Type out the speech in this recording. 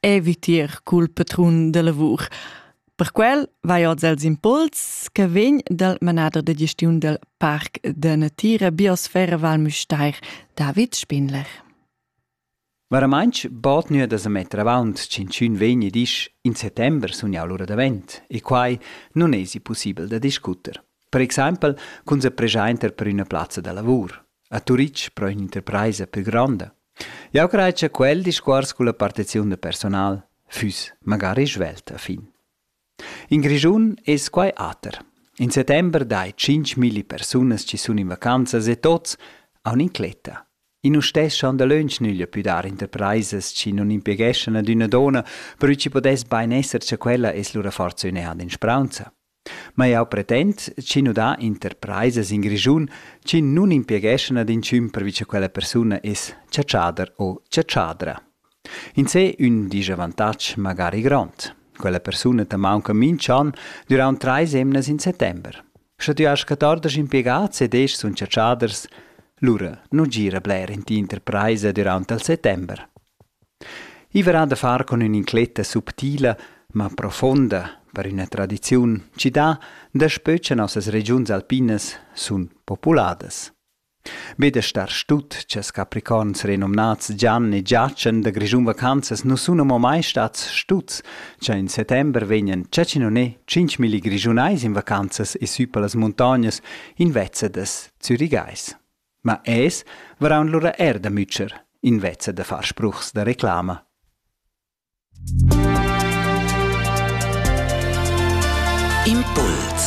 eviter cul patrun da lavur. Per quel vai oz els impuls che vegn dal manader de gestiun del Parc de Natira Biosfera Val Müstair, David Spindler. Varamantsch bod nua da sa metter avaunt tschintschün vegn e disch in settember sun jau lura davent e quai nun esi pussibel da discuter. Per exempel cun sa pregiainter per üna plazza da lavur. A Turitg pro ün'interpraisa plü gronda. Jau crai cha quel discuors culla partiziun da personal füss magari svelt a fin. In Grischun es quai ater. In settember dai tschinchmilli persunas chi sun in vacanzas e tots haun incletta. I nu stessan dalöntsch nüglia pü dar interpraisas chi nun impieghessan ad üna donna, però chi pudess bain esser cha quella es lura forsa ün'eada in spraunza. Ma jau pretend ch'i nu dà interpraisas in Grischun chi nun impiegeschan ad inchün pervi cha quella persuna es chatschader o chatschadra. In sé ün disavantag magari grond. Quella persuna ta maunca minch'an düraunt trais emnas in settember. Sche tü hast 14 impiegats ed esch sun chatschaders, lura nu gira bler in t'interpraisa düraunt al settember. I varà da far cun ün'incletta subtila, ma profonda per üna tradiziun chi dà daspö cha nossas regiuns alpinas sun populadas. Be da star stut cha'ls capricorns renomnats Gian e Giachen da Grischun vacanzas nu sun amo mai stats stuts, cha in settember vegnan chacinonè tschinchmilli grischunais in vacanzas e sü pa las muntognas invezzadas zürigais. Ma es varaun lura eir da mütscher invezza da far spruchs da reclama. Impuls